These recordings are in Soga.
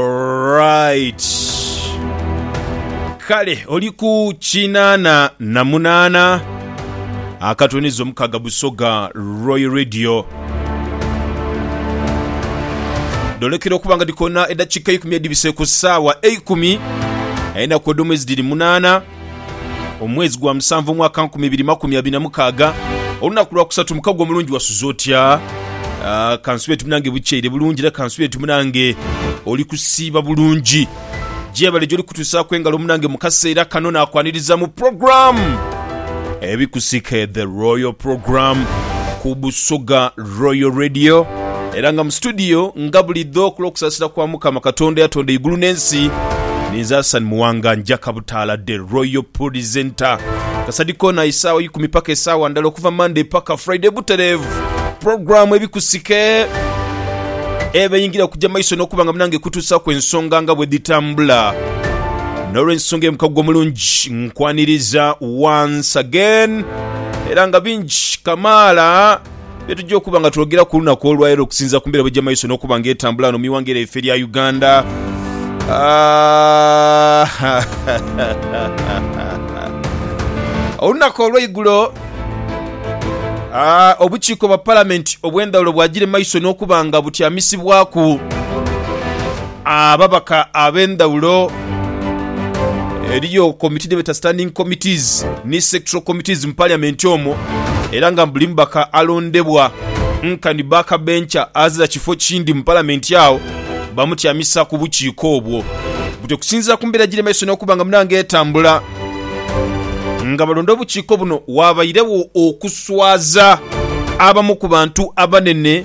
Alright. Kale oli ku kinaana na munaana akatoniza omukaga Busoga Royal Radio. Dholekera okuba nga dhikona edakika eikumi edhibise ku saawa eikumi enaku edhomwezi dhiri munaana. Omwezi gwa musanvu omwaka nkumi ibiri makumi abiri na mukaaga olunaku lwa kusatu mukagwa omulungi wasuze otya? Ah, kansubire ti munange bukyeire bulungi era kansubire ti munange oli kusiiba bulungi gyebale gyoli kutusaaku engalo munange mu kaseera kano nakwaniriza mu program ebikusike the royal program ku busoga Royal Radio era nga mu situdiyo nga bulidho ku lw'okusaasira kwa Mukama Katonda eyatonda eigulu n'ensi, ninze Hassan Muwanga njaka butaala The Royal Purizenta. Kasadi koona isaawa ikumi paka esaawa ndala okuva Monday paka Friday butereevu. Puroguramu ebikusike eba eyingira kugya maiso n'okuba nga munange ekutuusaaku ensonga nga bwe dhitambula. N'olw'ensonga eyo mukago omulungi nkwaniriza once again era nga bingi kamaala Bye tugya okuba nga twogera ku lunaku olwaleero okusinziira ku mbeera bwegya maiso n'okuba nga etambula ghano mu ighanga lyaife erya Uganda. Olunaku olweigulo obukiiko bwa palamenti obwendhawulo bwagire maiso n'okuba nga butyamisibwaku. ababaka ab'endhaghulo. Eriyo komiti dhebeeta standing committees ni sectoral committees mu parliament omwo era nga buli mubaka alondebwa nkani back bencher azira kifo kindi mu parliament agho bamutyamisa ku bukiiko obwo. Butyo okusinziira ku mbeera egiri mu maiso n'okuba nga munange etambula nga balonda obukiiko buno waabairegho okuswaza abamu ku bantu abanene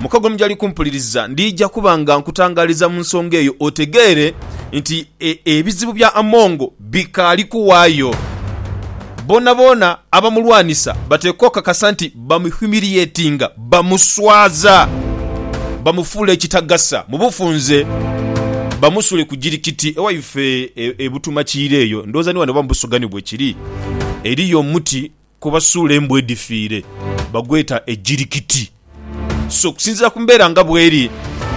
Mukago ni gy'ali kumpuliriza, ndija kuba nga nkutangaaliza mu nsonga eyo otegeere nti e, ebizibu bya Amongo bikaali kuwaayo. Boonaboona abamulwanisa bateekwa okakasa nti bamuhumiliatinga, bamuswaza, bamufuula ekitagasa mu bufunze, bamusuule ku jirikiti. Ewaife e, e Butumakiira eyo, ndowooza ni wano oba mu Busugha ni bwe kiri, eriyo omuti kwebasuula embwa edhifiire bagweta ejirikiti. So okusinziira ku mbeera nga bweri,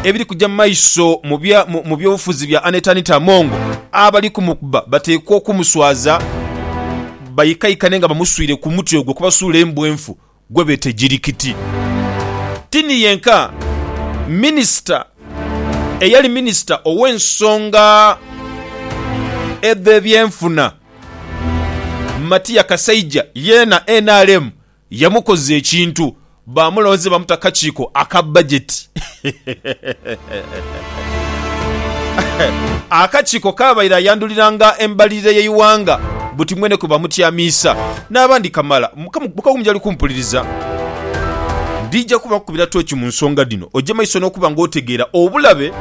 ebiri kuja mu maiso mu by'obufuzi bya Annet Anita Among, abali kumukuba bateekwa okumuswaza baikaikane nga bamuswiire ku muti ogwo kwebasuula embwa enfu gwebeeta ejirikiti. Tini yenka minisita eyali minisita ow'ensonga edh'ebyenfuna. Matia Kasaija yeena nrm yamukoza ekintu baamulonze bamuta kakiiko aka bajeti. Akakiiko kaabaire ayanduliranga embalirira y'eighanga buti mwene kwe bamutyamiisa n'abandi kamala. Mukama njali kumpuliriza. Ndija kubakubira tooki mu nsonga dhino, oje maiso n'okuba ng'otegeera obulabe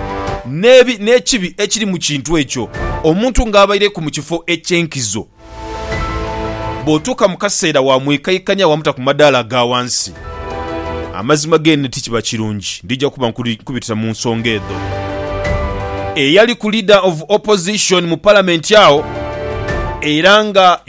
n'ebi n'ekibi ekiri mu kintu ekyo omuntu ng'abaireku mu kifo eky'enkizo. Bw'otuuka mu kaseera waamwikaikanya waamuta ku madaala aga wansi. Amazima geene tikiba kirungi. Ndija kuba nkubitira mu nsonga edho. Eyaliku Leader of Opposition mu Palamenti agho era nga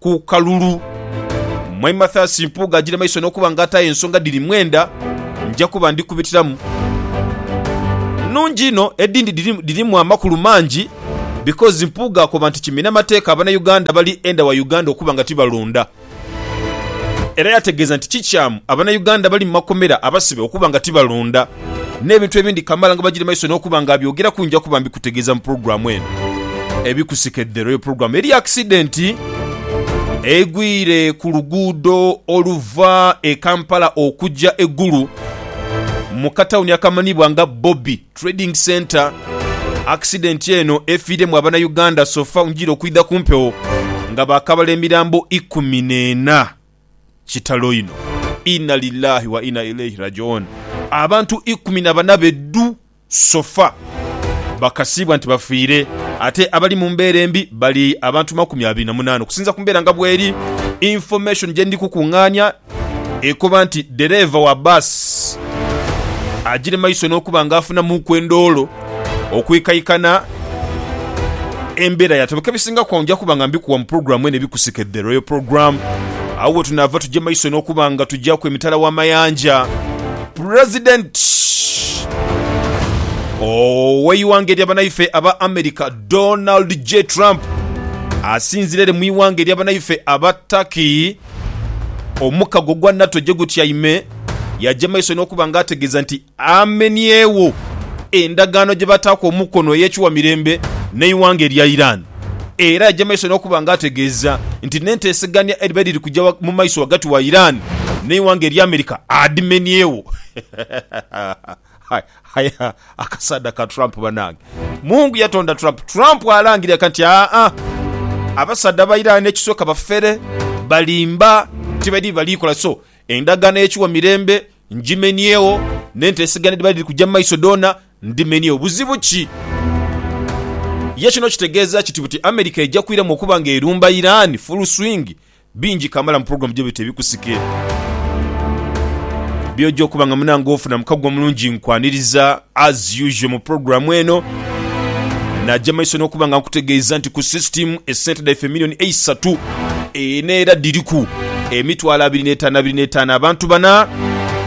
ku kalulu. Mwami Mathias Mpuuga agira maiso n'okuba nga ataayo ensonga dhiri mwenda, nja kuba ndi kubitiramu. Nnungi inho, edhindi dhirimu amakulu mangi because Mpuuga akoba nti kimina mateeka Abanauganda abali enda wa Uganda okuba nga tibalonda. Era yategeeza nti kikyamu Abanauganda abali mu makomera abasibe okuba nga tibalonda. n'ebintu ebindi kamala nga bagiri maiso n'okuba nga abyogeraku nja kuba mbikutegeeza mu pulogulaamu eno ebikusike The Royal Program. Eriyo akisidenti egwire ku luguudo oluva e Kampala okugya e Gulu mu katawuni akamanhibwa nga Bobi Trading Centre. Akisidenti eno efiiremu Abanauganda sofa njire okwidha ku mpewo nga baakabala emirambo ikumi n'ena. Kitalo inho! Inna lillahi wa inna ilaihi rajiun Abantu ikumi na bana be dhu sofa bakasiibwa nti bafiire ate abali mu mbeera embi bali abantu makumi abiri na munaana okusinza ku mbeera nga bweri Information gye ndi kukungaania ekoba nti ddereeva wa bus agire maiso n'okuba nga afunamuuku endoolo Okwikaikana embeera ya tebeka ebisinga kwa nja kuba nga mbikuwa mu pulogulaamu eno ebikusike The Royal Program. Agho wetunaava tugye maiso n'okuba nga tugyaku emitala w'amayanja. Pulezidenti ow'eighanga erya banaife aba America Donald J Trump asinzira ere mu ighanga erya banaife aba Turkey omukago gwa NATO gyegutyaime, yaagya maiso n'okuba nga ategeeza nti Amenyegho endagaano gye bataaku omukono ey'ekiwa mirembe n'eighanga erya Iran era yaja mu maiso n'okuba nga ategeeza nti n'enteesegania edhiba dhiri kuja mu maiso ghagati wa Iran n'eighanga erya America adhimenyeegho. Aye akasaadha ka Trump banange! Mungu yatonda Trump, Trump alangire eka nti aa abasaadha ba Iran ekisooka bafere, balimba, tibali bye bali kola so endagaano ey'ekiwa mirembe Ngimenyeegho, n'enteesegana edhiba dhiri kuja mu maiso dhoona ndimenyeegho. Buzibu ki? Ye kino kitegeeza kiti buti America eja kwiramu okuba nga erumba Iran full swing? Bingi kamala mu pulogulaamu gye bita Ebikusike. By'oja okuba nga munange ofuna mu kaguwa mulungi nkwaniriza. As usual mu program eno, naja maiso nokuba nga nkutegeiza nti ku system esente dhaife million eisatu eno era dhiriku emitwalo abiri n'etaano abiri n'etaano abantu bana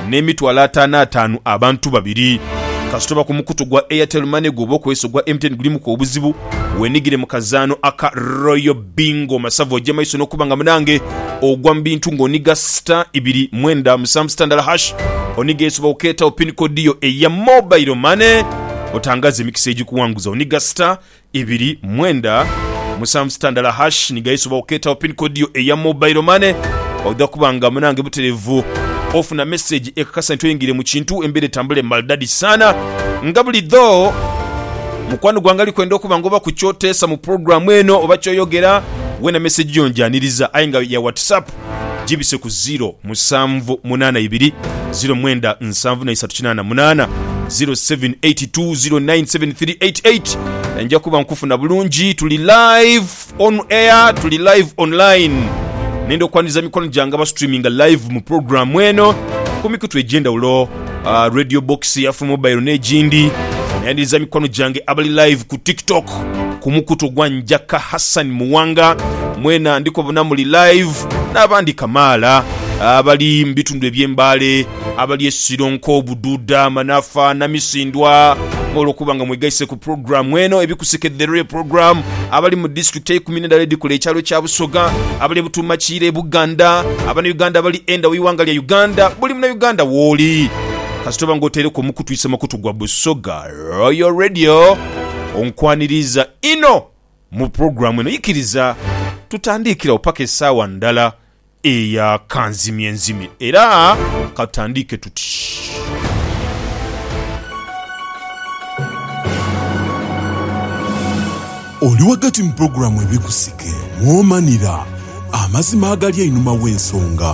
n'emitwalo ataano ataanu abantu babiri. Kasita oba ku mukutu gwa Airtel Money gwoba okozesa ogwa MTN gulimuku obuzibu, wenigire mu kazaano aka Royal Bingo Masavu oje maiso nokuba nga munange ogwa mubintu nga oniga star ibiri mwenda musanvu star ndala hash oniga esobola okuketawo pin code yo eya mobile money otangaze emikisa egikuwanguza oniga star ibiri mwenda musanvu star ndala hash niga esobola okuketawo pin code yo eya mobile money oja kuba nga munange buterevu ofuna message ekakasa nti oyingire mukintu embera etambule maldadi sana nga buli dho. Mukwano gwange ali kwenda okuba nga oba ku ky'oteesa mu pulogulaamu eno oba ky'oyogera, weena mesegi yo ngyaniriza aye nga ya Whatsapp gibise ku ziro musanvu munaana ibiri ziro mwenda nsanvu na isatu kinaana munaana, ziro seven eight two ziro nine seven three eight eight, nja kuba nkufuna bulungi. Tuli live. On air tuli live online nenda okwaniriza emikono gyange aba streaminga live mu pulogulaamu eno ku mikutu egy'endhawulo, ah, Radio Box, Afro Mobile n'egindi. Nayaniriza mikono gyange abali live ku TikTok ku mukutu ogwa Njaka Hassan Muwanga, mwena ndi kubabona muli live, n'abandi kamaala abali mu bitundu eby'e Mbale, abali e Sironko, Bududa, Manafa, Namisindwa nga olwokuba nga mwegaise ku pulogulaamu eno ebikusike The Real Program abali mu disitulikiti eikumi n'endala edhikola ekyalo kya Busoga abali e Butuumakiira e Buganda Abanauganda abali enda w'eighanga lya Uganda Buli Munauganda wooli kasita oba nga otaireku omukutu isa mukutu gwa Busoga Royal Radio onkwaniriiza inho mu pulogulaamu eno. Ikiriza tutandiikire agho paka esaawa ndala Eya kanzimye nzimye era katandiike tuti. Oli ghagati mu pulogulaamu Ebikusike, mwomanira amazima agali einhuma w'ensonga.